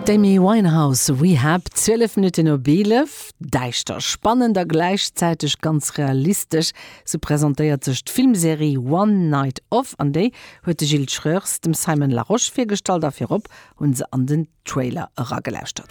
D'Amy Winehouse, Rehab, 12 Minutten op 11. Däischter, spannend a gläichzäiteg ganz realistesch, sou presentéiert sech d'Filmserie One Night Off an déi huet de Gilles Schreurs dem Simon Larosche virgestallt a virop hu se an den Trailer eragelauschtert.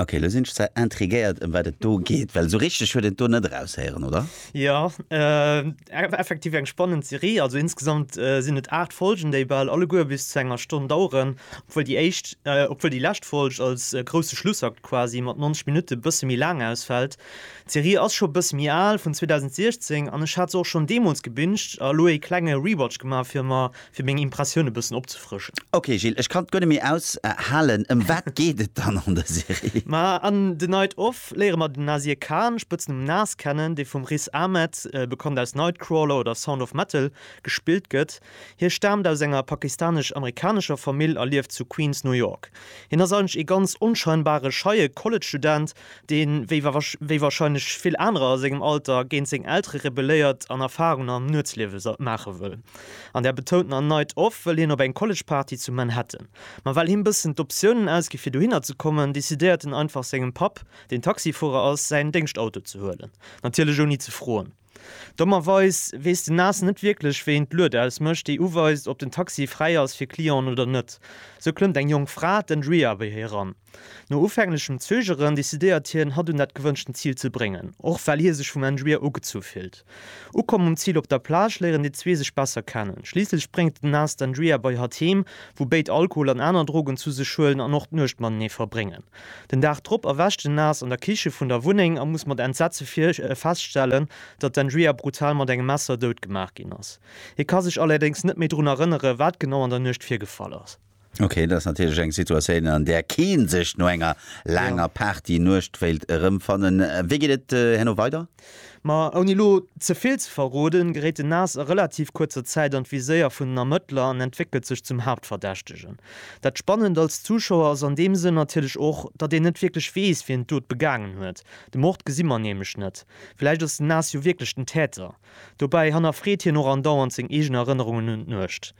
Ok, elo sinn ech zwar intriguéiert ëm wat et do geet, well esou richteg huet een et do net eraushéieren, oder? Jo, effektiv eng spannend Serie. Also insgesamt sinn et 8 Folgen, déi bal alleguer bis zu enger Stonn daueren, obwuel déi éischt, obwuel déi lescht Folg als grousse Schlussakt quasi mat 90 Minutte e bësse méi laang ausfält. D'Serie ass scho e bësse méi al, vun 2016, an ech hat se och schonn deemools gebinged a elo ee klenge Rewatch gemaach fir mer fir meng Impressioun e bëssen opzefrëschen. Ok Gilles, ech kann et guer net méi aus halen. Ëm wat geet et dann an der Serie? Ma an The Night Of léiere mer den Nasir Khan, Spëtznumm Nas, kennen, dee vum Riz Ahmed, bekannt aus Nightcrawler oder Sound of Metal, gespillt gëtt. Hie staamt aus enger pakistanesch-amerikanescher Famill a lieft zu Queens, New York. Hien ass eigentlech ee ganz onscheinbare, scheie College-Student, deen, wéi warscheinlech vill anerer a sengem Alter, géint seng Eltere rebelléiert an Erfarungen am Nuetsliewe maache wëll. An der betountener Night Off wëll hien op eng College-Party zu Manhattan. Ma well him bëssen d'Optiounen ausgi fir dohinner ze kommen, decidéiert en einfach sengem Papp, deen Taxifuerer ass, säin Déngschtauto ze huelen. Natierlech ouni ze froen. Dommerweis weess den Nas net wierklech, wéi een d'Lued ausmécht, déi uweist, ob den Taxi fräi ass fir Clienten oder net. Sou klëmmt eng jonk Fra, d'Andrea, bei hie eran. No ufänglechem Zögeren decidéiert hien, hatt un dat gewënschten Zil ze bréngen, och well hie sech vum Engier ugezu fillt. Ukomm um Zil op der Plage léieren déi zwee sech besser kennen. Schliisslech bréngt den Nas d'Engier bei hatt heem, wou béid Alkohol an aner Drogen zu sech huelen an och d'Nuecht matenee verbréngen. Den Dag drop erwächt den Nas an der Kiche vun der Wunneng a muss mat Entsetze feststellen, datt d'Engier brutal mat engem Messer dout gemaach ginn ass. Hie ka sech allerdéngs net méi drun erënneren, wat genau an der Nuecht virgefall ass. Okay, dat ass natierlech eng Situatioun, an där kee sech no enger laanger Party-Nuecht wéilt erëmfannen. Wéi geet et herno weider? Ma ouni elo ze vill ze verroden, geréit den Nas a relativ kuerzer Zäit an d'Viséier vun den Ermëttler an entwéckelt sech zum Haaptverdächtegen. Dat Spannend als Zuschauer ass an deem Sënn natierlech och, datt een net wierklech weess, wien d'Dot begaangen huet. De Mord gesi mer nämlech net. Vläicht ass den Nas jo wierklech den Täter. Dobäi hannerfreet hien och andauernd seng eegen Erënnerungen un d'Nuecht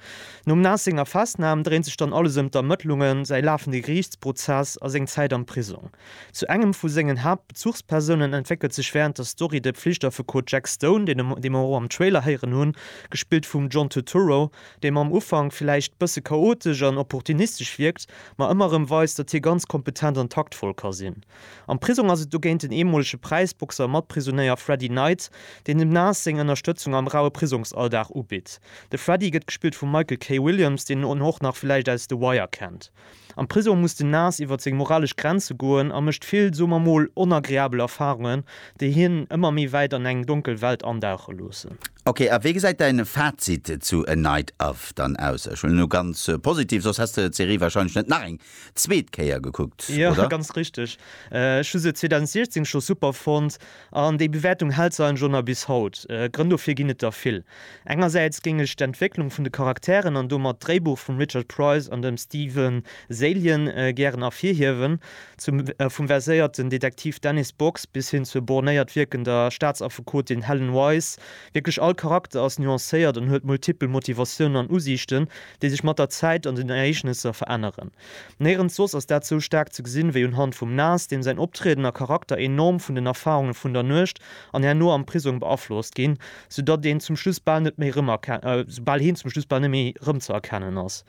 nom Nas. Senger Festnam dréint sech dann alles ëm d'Ermëttlungen, säi lafende Geriichtsprozess a seng Zäit am Prisong. Zu engem vu sengen Haaptbezuchspersounen entwéckelt sech wärend der Story de Pflichtaffekot Jack Stone, dee mer och am Trailer héieren hunn, gespillt vum John Turturro, dee mam Ufank villäicht bësse chaotesch an opportunistesch wierkt, ma ëmmer erëm weist, datt hie ganz kompetent an taktvoll ka sinn. Am Prisong ass et dogéint den eemolege Präisboxer a Matprisonéier Freddy Knight, deen dem Nas seng Ënnerstëtzung am raue Prisongsalldag ubitt. De Freddy gëtt gespillt vum Michael K. Williams, deen en och nach villäicht aus The Wire kennt. Am Prisong muss den Nas iwwer seng moralesch Grenze goen a mécht vill, soe mer mol, onagreabel Erfarungen, déi hien ëmmer méi wäit an eng donkel Welt andauche loossen. Ok, a wéi gesäit däin Fazit zu A Night Of dann aus? Ech huelen elo ganz positiv, soss häss de d'Serie wahrscheinlech net nach eng zweet Kéier gekuckt, oder? Jo, ganz richteg. Ech hu se 2016 scho super fonnt an déi Bewäertung hält se eigentlech och nach bis haut. Grënn dofir ginn et der vill. Engersäits géing ech d'Entwécklung vun de Charakteren an domat d'Dréibuch vum Richard Price an dem Stephen Zaillian gären ervirhiewen, zum vum verséierten Detektiv Dennis Box bis hin zur bornéiert wierkender Staatsaffekotin Helen Wise. Wierklech all Charakter ass nuancéiert an huet multipel Motivatiounen an Usiichten. déi sech mat der Zäit an den Ereegnesser veränneren. Néirens soss ass dat sou staark ze gesinn, wéi unhand vum Nas, deem säin Optrieden a Charakter enorm vun den Erfarunge vun der Nuecht an herno am Prisong beaflosst ginn, soudatt een zum Schluss bal net méi rëmerken, bal heen zum Schluss bal net méi rëmzëerkennen ass.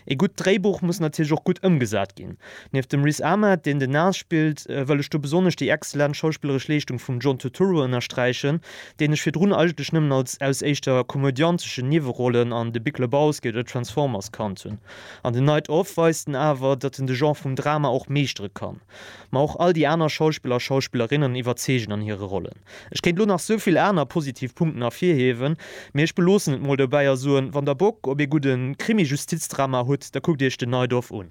Ee gutt Dréibuch muss natierlech och gutt ëmgesat ginn. Nieft dem Riz Ahmed, deen den Nas spillt, wëll ech do besonnesch déi exzellent schauspilleresch Leeschtung vum John Turturro ënnersträichen, deen ech virdrun eigentlech nëmmen als aus éischter komödianteschen Niewerollen an The Big Lebowski oder Transformers kannt hunn. An The Night Of weist en awer, datt en de Genre vum Drama och meeschtere kann. Ma och all déi aner Schauspiller a Schauspillerinnen iwwerzeegen an hire Rollen. Ech kéint lo nach sou vill aner positiv Punkten ervirhiewen, mee ech beloossen et mol dobäi a soen, wann der Bock op ee gudde Krimi-Justizdrama hutt, da kuckt iech The Night Of un.